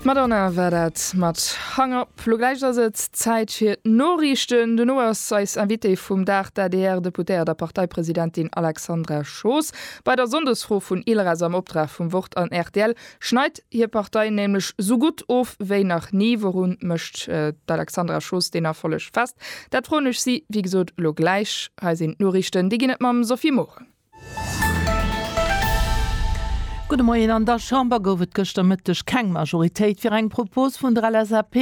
D'Madonna war dat mat Hung Up. Lo gläich ass et Zäit fir d'Noriichten. Dono ass eis Invitée vum Dag d'ADR-Deputéiert a Parteipresidentin Alexandra Schoos. Bei der Sonndesfro vun ILRadio am Opdrag vum Wort an rtl schneit hir Partei nämlech sou gutt of wéi nach ni. Wourun mécht d'Alexandra Schoos deen Erfolleg fest? Dat froen ech si wéi gesot lo gläich. Hei sinn d'Noriichten. Déi ginn et mam Sophie Morang. Gudde Moien, An der Chamber gouf et gëschter Mëtteg keng Majoritéit fir eng Propos vun der LSAP,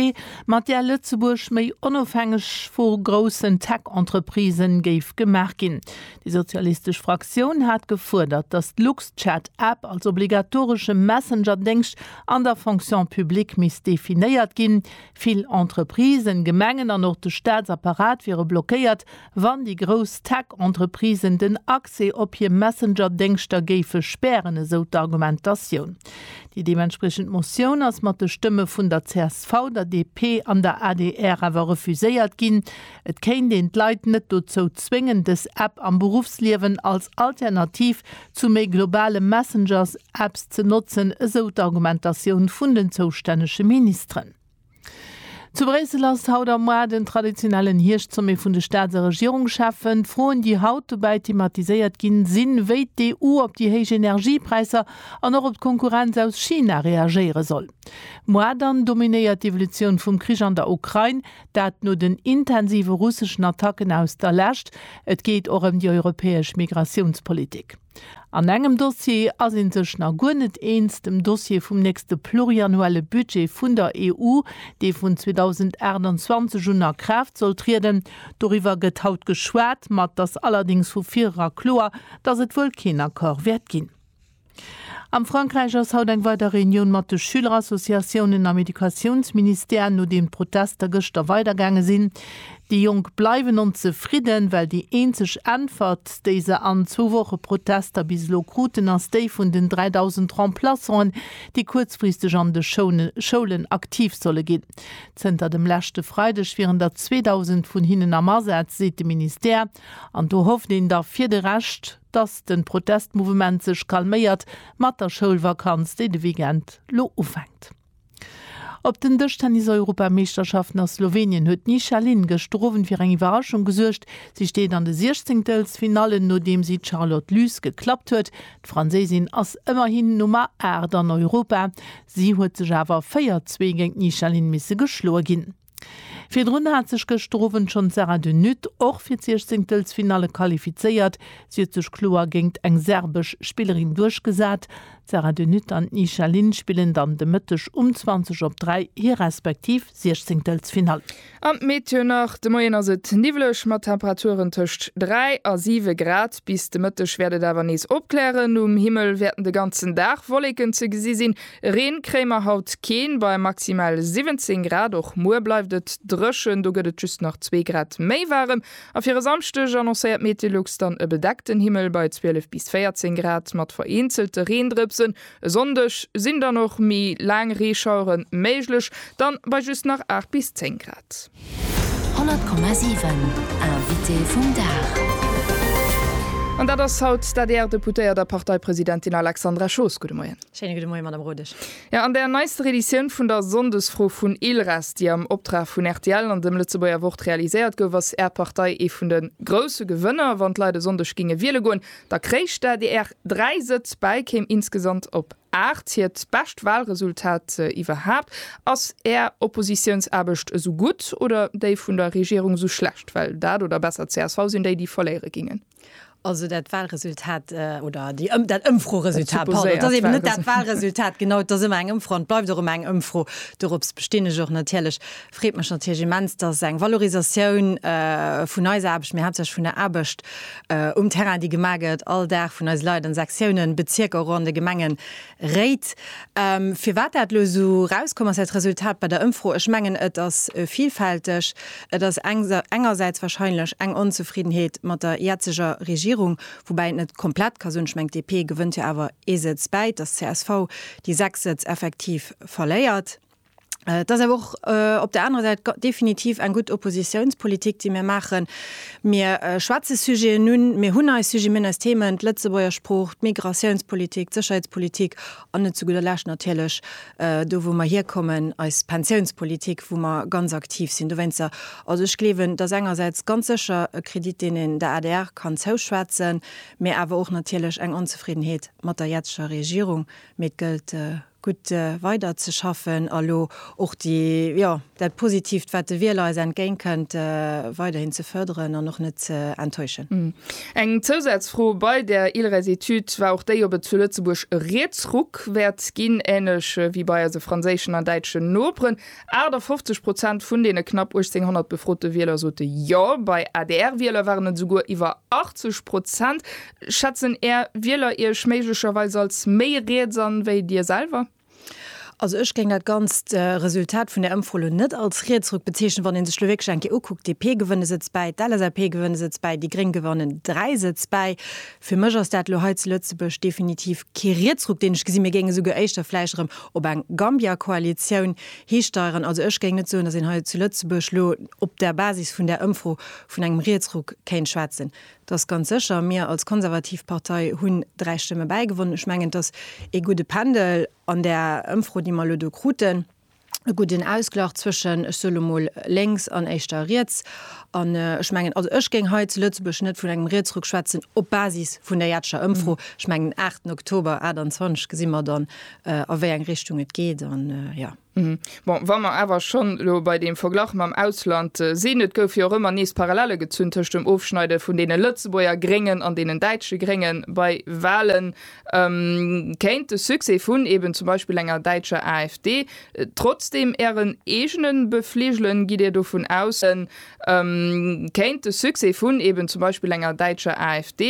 mat där Lëtzebuerg méi onofhängeg vu groussen Tech-Entreprisë géif gemaach ginn. Déi sozialistesch Fraktioun hat gefuerdert, datt d'Luxchat-App als obligatoresche Messenger-Déngscht an der Fonction publique misst definéiert ginn. Vill Entreprisen, Gemengen an och de Staatsapparat wiere blockéiert, Wann déi grouss Tech-Entreprisen den Accès op hir Messenger-Déngschter géife spären, esou d'Argumentatioun. Déi deementspriechend Motioun ass mat de Stëmme vun der csv, der DP an der adr awer refuséiert ginn. Et kéint een d'Leit net dozou zwéngen, dës App am Beruffsliewen als Alternativ zu méi globale Messengers-Apps ze notzen, esou d'Argumentatioun vun den zoustännege Ministeren. Zu Bréissel ass haut am Mois den traditionellen Hierscht-Sommet vun de Staats a Regierungscheffen. D'Froen, déi haut dobäi thematiséiert ginn, sinn, wéi d'EU op déi héich Energiepräisser an och op d'Konkurrenz aus China reagéiere soll. Mois dann dominéiert d'Evolutioun vum Krich an der Ukrain, dat no den intensive russeschen Attacken aus der Lescht. Et geet och ëm déi europäesch Migratiounspolitik. An engem Dossier ass ee sech nach guer net eens, dem Dossier vum nächste pluriannuelle Budget vun der EU, dee vun 2028 un a Kraaft soll trieden. Doriwwer gëtt haut geschwat, ma et ass allerdéngs vu virera kloer, datt et wuel keen Accord wäert ginn. Am Frankräich ass haut eng weider Reunioun mat de Schülerassociatiounen am Educatiounsministère, nodeem d'Protester gëschter weidergaange sinn. Déi Jonk bleiwen onzefridden, well déi eenzeg Äntwert, déi se an zwou Woche Protester bis elo kruten, ass déi vun den 3.000 Remplaçanten, déi kuerzfristeg an de Schoulen aktiv solle ginn. Zënter dem leschte Freideg wieren der 2.000 vun hinnen am Asaz, seet de Ministère. An do hofft een da fir de Rescht, dass de Protestmouvement sech calméiert mat der Schoulvakanz, déi de Weekend lo ufänkt. Op den Dëschtennis-Europameeschterschaften a Slowenien huet d'Nisha Lin gëschter Owend fir eng Iwwerraschung gesuergt. Si steet an de Siechzéngtelsfinallen, nodeem si d'Charlotte Lys geklappt huet. D'Franséisin ass ëmmerhin Nummer 8 an Europa. Si huet sech awer 4, Zwee géint d'Nisha Lin misse geschloe ginn. Virdrun hat sech gëschter Owend schonn d'Sara de Nutt och fir d'Siechzéngtelsfinalle qualifizéiert. Si huet sech kloer géingt eng serbesch Spillerin duerchgesat. D'Sara de Nutt an d'Nisha Lin spillen dann de Mëtteg um 20 op 3 hir respektiv Siechzéngtelsfinall. An d'Meteo nach, De Moien ass et niwwleg mat Temperaturen tëscht 3 a 7 Grad. Bis de Mëtteg wäert et awer nees opklären. Um Himmel wäerten de ganzen Dag Wolleken ze gesi sinn. Reen kréie mer haut keen, bei maximal 17 Grad. Och muer bleift et dréchen, do gëtt et just nach zwee Grad méi waarem. A fir e Samschdeg annoncéiert Metelux dann e bedeckten Himmel bei 12 bis 14 Grad mat vereenzelte Reendrëpsen. E Sonndeg sinn dann och méi laang Reeschauere méiglech, dann bei just nach 8 bis 10 Grad. 100,7 Invité vum Dag. An dat ass haut d'ADR-Deputéiert a Parteipresidentin Alexandra Schoos. Gudde Moien. Schéine gudde Moie, Madame Rodesch. Jo, an der neiste Reditioun vun der Sonndesfro vun ILRes, déi am Optrag vun rtl an dem Lëtzebuerger Wort realiséiert gouf, ass Är Partei ee vun de grousse Gewënner. Wann d'Leit e Sonndeg géinge wiele goen, da kréich d'ADR dräi Sëtz bäi, kéim insgesamt op. Aart, hiert bescht Wahlresultat iwwerhaapt. Ass Är Oppositiounsaarbecht esou gutt oder déi vun der Regierung esou schlecht? Well dat, oder besser csv, sinn déi, déi verléiere gingen. Also dat Wahlresultat, oder déi Ëm-, dat Ëmfroresultat, pardon, et ass eben net dat Wahlresultat, genau, et ass ëmmer eng Ëmfro an et bleift och ëmmer eng Ëmfro, dorops bestinn ech och natierlech. Freet mech natierlech immens, dass eng Valorisatioun vun eis Aarbecht, mee haaptsächlech vun der Aarbecht um Terrain, déi gemaach gëtt all Dag vun eise Leit an de Sektiounen, Bezierker, och an de Gemengen, réit. Firwat dat elo esou erauskomm ass, dat Resultat bei der Ëmfro, ech mengen, et ass vilfälteg. Et ass engersäits wahrscheinlech eng Onzefriddenheet mat der jetzeger Regierung, woubäi een et net komplett ka soen. Ech mengen, d'DP gewënnt jo awer ee Sëtz bäi, dass d'CSV déi sechs Sëtz effektiv verléiert. Et ass awer och op där anerer Säit definitiv eng gutt Oppositiounspolitik, déi mir maachen. Mir schwätze Sujeten un, mir hunn eis Sujeten, mir hunn eis Themen, d'Lëtzebuerger Sprooch, d'Migratiounspolitik, d'Sécherheetspolitik an net zu gudder Lescht natierlech, do wou mer hierkommen, eis Pensiounspolitik, wou mer ganz aktiv sinn dowéinster. Also ech gleewen, dass engersäits ganz sécher e Kredit, deen een der adr kann zouschwätzen, mä awer och natierlech eng Onzefriddenheet mat der jetzeger Regierung. Mee et gëllt gutt weider ze schaffen a elo och déi, jo, dat Positiivt, wat de Wieler eis entgéint kënnt, weiderhin ze fërderen an och net ze enttäuschen. Eng Zousazfro, Bei der ILRES-Etüd war och déi, ob et zu Lëtzebuerg e Rietsruck wäert ginn, änlech wéi bei eise franséischen an däitschen Noperen. 58 Prozent vun deene knapp 1800 befrote Wieler sote Jo, bei ADR-Wieler waren et esouguer iwwer 80 Prozent. Schätzen Är Wieler Iech méiglecherweis als méi riets an, wéi Dir selwer? Also ech géing dat ganzt Resultat vun der Ëmfro elo net als Rietsruck bezeechnen, wann ee sech elo wierklech eng Kéier ukuckt, DP gewënnt e Sëtz bäi, d'LSAP gewënnt e Sëtz bäi, déi Gréng gewannen dräi Sëtz bäi. Fir mech ass dat elo hei zu Lëtzebuerg definitiv kee Rietsruck, deen ech gesinn. Mir géinge souguer éischter vläicht erëm op eng Gambia-Koalitioun histeieren. Also ech géing net soen, datt een hei zu Lëtzebuerg elo op der Basis vun där Ëmfro vun engem Rietsruck kéint schwätzen. Et ass ganz sécher, mir als konservativ Partei hunn dräi Stëmme bäigewonnen. Ech mengen, et ass ee gudde Pendel an där Ëmfro, déi mer elo do kruten. e gudden Ausglach zwëschen, ech soe lo mol, lénks an éischter riets. An ech mengen, also ech géing hei zu Lëtzebuerg net vun engem Rietsruck schwätzen op Basis vun der jetziger Ëmfro. Ech mengen, aachten Oktober 28 gesi mer dann, a wéi eng Richtung et geet. An jo. Bon, wa mer awer schonn elo bei deem Verglach mam Ausland sinn, et gouf jo och ëmmer nees Parallelle gezunn tëscht dem Ofschneide vun deene Lëtzebuerger Gréngen an deenen däitsche Grénge bei Walen, Kéint de Succès vun eben zum Beispill enger däitscher AfD trotzdeem Ären eegene befligelen? Gitt Dir dovun aus? Kéint de Succès vun eben zum Beispill enger däitscher AfD.